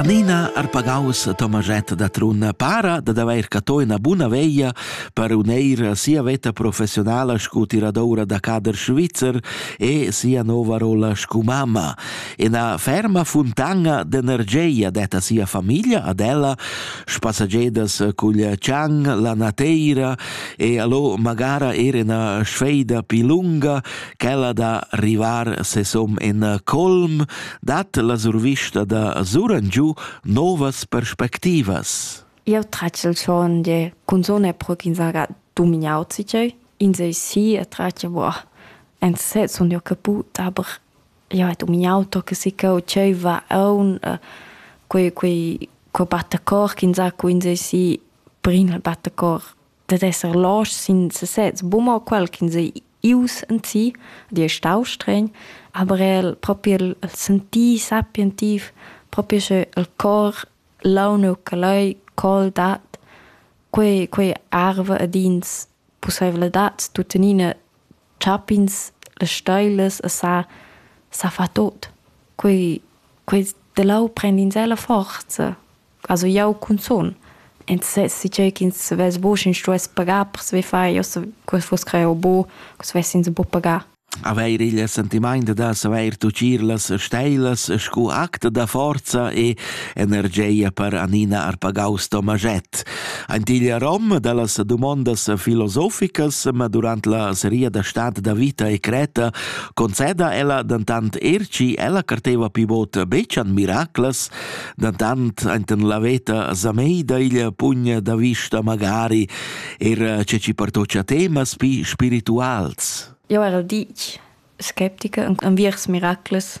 Annina Arpagaus Tomaschett da Trun para dad avair catto ina buna veglia per uneir sia veta professionala sco tiradoura da cader svizzer e sia nova rolla sco mamma. Ina ferma fontana d'energia detta sia famiglia ad ella, spassagedas cugl Chang, la Nateira e allo magara er ina sfeida pi lunga quella da rivar sesom in colm dat la survista da suran giu novas perspectivas. Eu tracel schon de cunzone pro ch'in saga domignau zicei. In sei si e trace boh. En se sun io caput, aber io het domignau to che si cau ceiva aun quei quei quei battacor ch'in sa cu in sei si prin il battacor dat esser los sin sesez bumma quel ch'ins ei ius en si, di è stau stregn, aber el proprio il, il sentì sapientiv, proprio sche il cor launu che lei col dat quei, quei arve ed ins possibilitads tutenina chapins le steiles e sa, sa fa tot. Quei, quei de lau prend in sela forza. Also jau cunzun. Ensassi tgei ch'ins vess buc, sch'ins stuess pagar per saver far. Io se quel fuss creo bu, che svess'ins buc pagar. Avair il sentiment da savair tucir las steilas scu act da forza e energia per Anina Arpagaus Tomaget. Antiglia rom da las dumondas filosoficas, ma durant la seria da stat da vita e creta conceda ella dentant erci ella carteva pivot betschan miraclas, da tant enten la veta sameida iglia pugna da vista magari era che ci partocia temas pi spirituals. Jo era dic skeptica enviers miracles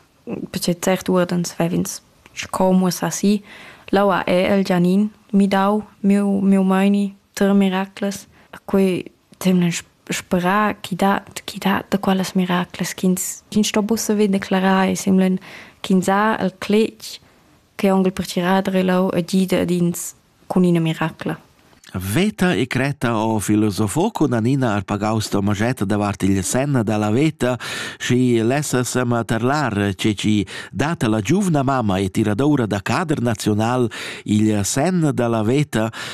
perché cert uordens vevins scomus assi laua è el Gianin mi dau miu miu maini ter miracles a quei temlan sperar ch'i dat ch'i dat da quellas miraclas ch'ins ch'ins sto buca vegnir declarar e semlan ch'ins ha il cletg che onn per tirar da relau e gida ad ins cun ina miracla. Veta e creta o filosofo con Anina Arpagaus Tomaget davart il senna dalla veta și lessasem terlar ce ci data la giuvna mamma e tiradoura da cader nazional il senn dalla veta